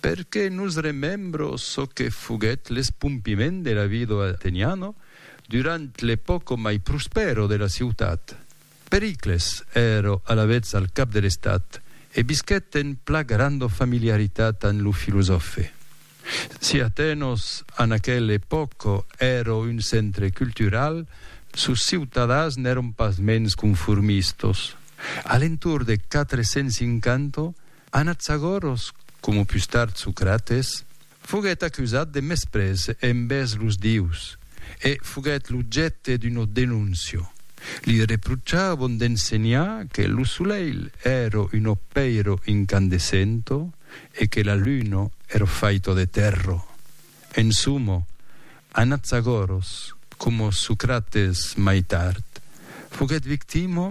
Perque nos remembro çò que foguèt l'espompiment de la vida d'Ateniano durant l'epòca mai prospèra de la ciutat. Pericles èra alavetz al cap de l'estat e visquèt en pla granda familiaritat amb lo filosòfe. Si Atenas en aquela epòca èra un centre cultural, sos ciutadans n'èran pasmens conformistas. A l'entorn de 450, Anaxagoros, coma pus tard Socrates, foguèt acusat de mesprés envèrs los dieus e foguèt l'objècte d'una denóncia. Li reprochavon d'ensenhar que lo solelh èra un opèiro incandescento e que la luna èra faita de tèrra. En soma, Anaxagoros, coma Socrates mai tard, foguèt victima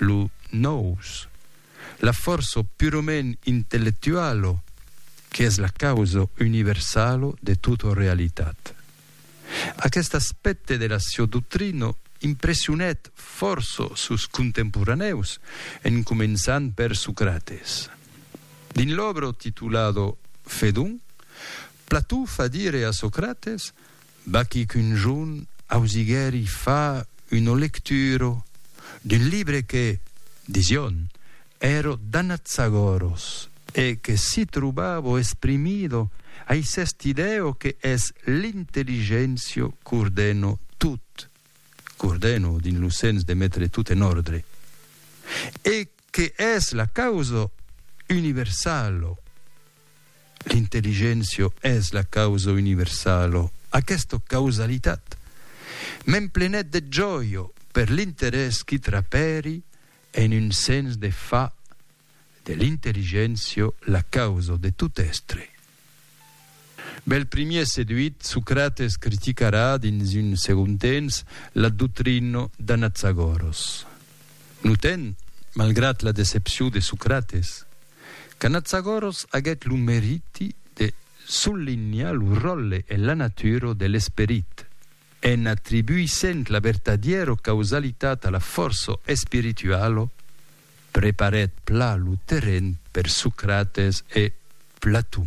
Lo nòus, la fòrça purament intellectuala qu'es la causa universala de tota realitat. Aqueste aspècte de la siá doctrina impressionèt fòrça sos contemporanèus, en començant per Socrates. Dins l'òbra titulada Fedon, Plató fa dire a Socrates Vaquí qu'un jorn ausiguèri fa una lectura d'un libre que, dision, èro d'Anatsagòros e que si trobavo esprimido ai s'est idèo que es l'intelligéncia qu'ordèno tot, qu'ordèno dins lo sens de metre tot en òrdre, e que es la causa universalo, l'intelligéncia es la causa universalo, aquesta causalitat m'emplenèt de jòia per l'interès qui trapèri en un sens de far de l'intelligéncia la causa de tot èstre. Bèl primièr seduit, Socrates criticarà dins un segond temps la doctrina d'Anaxagòros. Notèm, malgrat la decepcion de Socrates, qu'Anaxagòros aguèt lo meriti de sollenhar lo ròtle e la natura de l'esperit, en atribuissent la vertadièra causalitat a la fòrça espirituala, Preparèt pla lo terren per Socrates e Platon.